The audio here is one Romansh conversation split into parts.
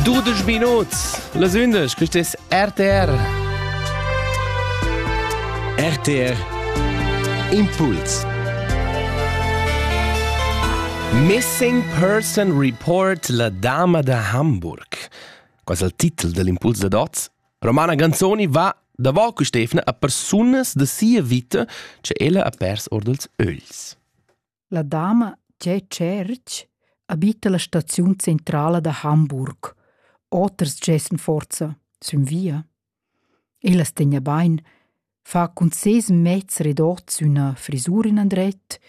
12 Minuten, las 11, quest ist RTR. RTR Impuls. Missing Person Report La Dama da Hamburg. Qual è il titolo dell'impuls da Dots? Romana Ganzoni va davò cu Stefna a persunas de sia vita che ella ha pers ordels ögls. La dama Tge Tscherch abita la staziun centrala da Hamburg. Oters gessen forza sün via. Ella stegna bain, fa cun ses mezs redots üna frisur in andret,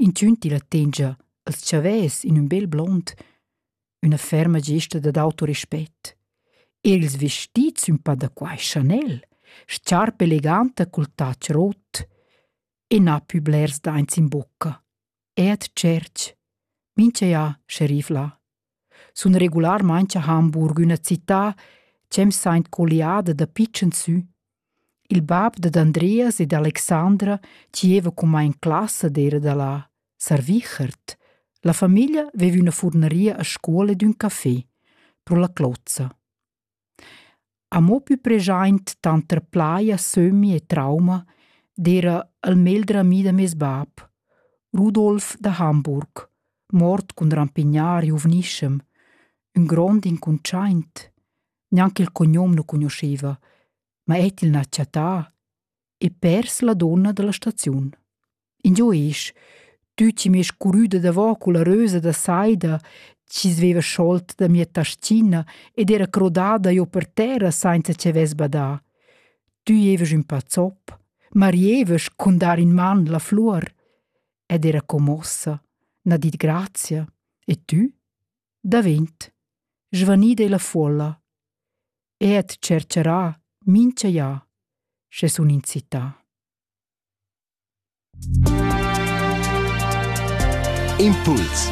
intündi la tengia als chavès in ün bel blond, üna ferma gesta dad autorespett. Els vestits ün pa da quai Chanel, sciarpa eleganta cul touch rot, e na pü blers daints in bucca. E at tscherch. Mincha ja, sceriff là. Sun regularmaing a Hamburg üna città c'em saint colliada da pitschen sü. Il bab dad Andreas ed Alexandra gieva coma in classa d'era da là, Sarvichert. La famiglia veva üna furneria a scuola ed ün café, pro la Clozza. Amo pü preschaint tanter plaja, sömmi e trauma d'eira il meglder ami da meis bap, Rudolf da Hamburg, mort cun rampignar giuvnischem, ün grond incuntschaint. Gnanca il cognom nu cugnuscheva, ma et il n'ha chattà. e pers la donna dalla staziun. Ingio esch, tü chi mi es curüda davò culla rösa da saida, chi sveva scholt da mia tastina ed era crodada io per terra sainza che vess badà. Tü evas ün pazzop, marievas cun dar in man la flur. Ed era commossa, n'ha dit grazia, e tü? Davent. Svanida è la folla. e tschercherà mincha ja, sche sun in città. Impuls